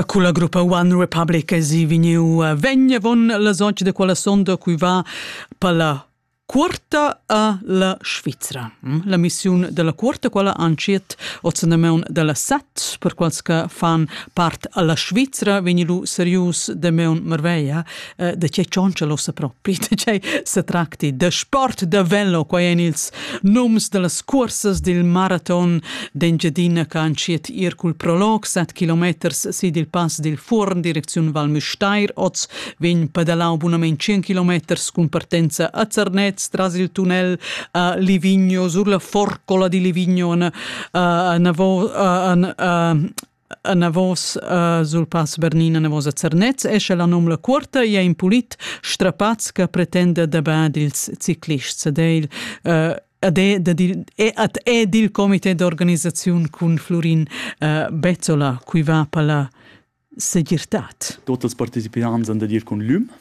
Culla gruppa One Republic esi vegniu eh, vegn avon la zonch da quella sonda cui va per la cuorta a la Svizra. Mm? La missiun della cuorta, quella anciet ozzanamaun della set, per quals che fan part alla Svizra, vegni lu serius de meun marveia, eh, da che tschontscha l'ossa propri, da che se tracti de sport de velo, quai en ils nums de las cursas del maraton d'Engiadina che han schiet ir cul prolog 7 kilometers sid il pass del Furn, direcziun Val Müstair, oz vegn pedalau bunament 100 kilometers cun partenza a Zernez, tras il tunnel a Livigno, sur la forcola di Livigno, a Navo, a, a, a, anavos uh, sul pass Bernin anavos a Zernez esce la nom la cuorta e in pulit strapaz che pretenda da bad ils ciclists ad el uh, ad è, ad è dil comité d'organisaziun cun Florin uh, Bezzola cui va palla segirtad. Totes partecipants han da dir con l'um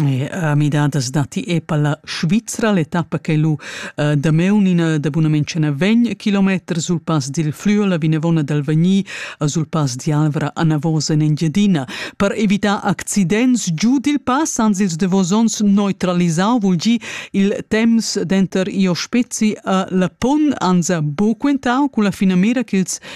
E midadas datti e per la Svizra l'etappa ch'ei lu damaun ina dabunament ce ne vegn kilometers sul pass dil Flüela vinavon dal Vegni sul pass d'Alvra anavos en Engiadina. Per evitar accidents giu dil pass han ils davos onns neutralisau vul gi il temps denter Io Spezi e La Pon, anza buc quentau cun la finamira ch'ils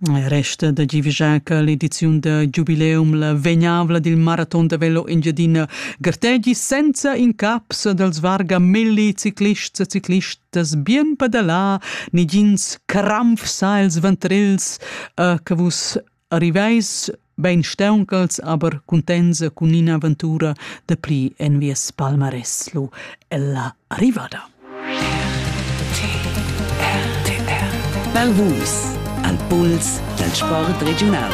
Resta da givigiar che l'ediziun da giubileum, la vegnavla dil maraton da velo Engiadina, gartegi senza incaps dals vargamelli ciclists e ciclistas bien padalà, negins cramfs els ventrils, e che vus arriveis Bein stauncals aber cuntenza cun in'aventura da pli en vies palmarès lu ella arrivada. Bel hus al puls dal sport regiunal.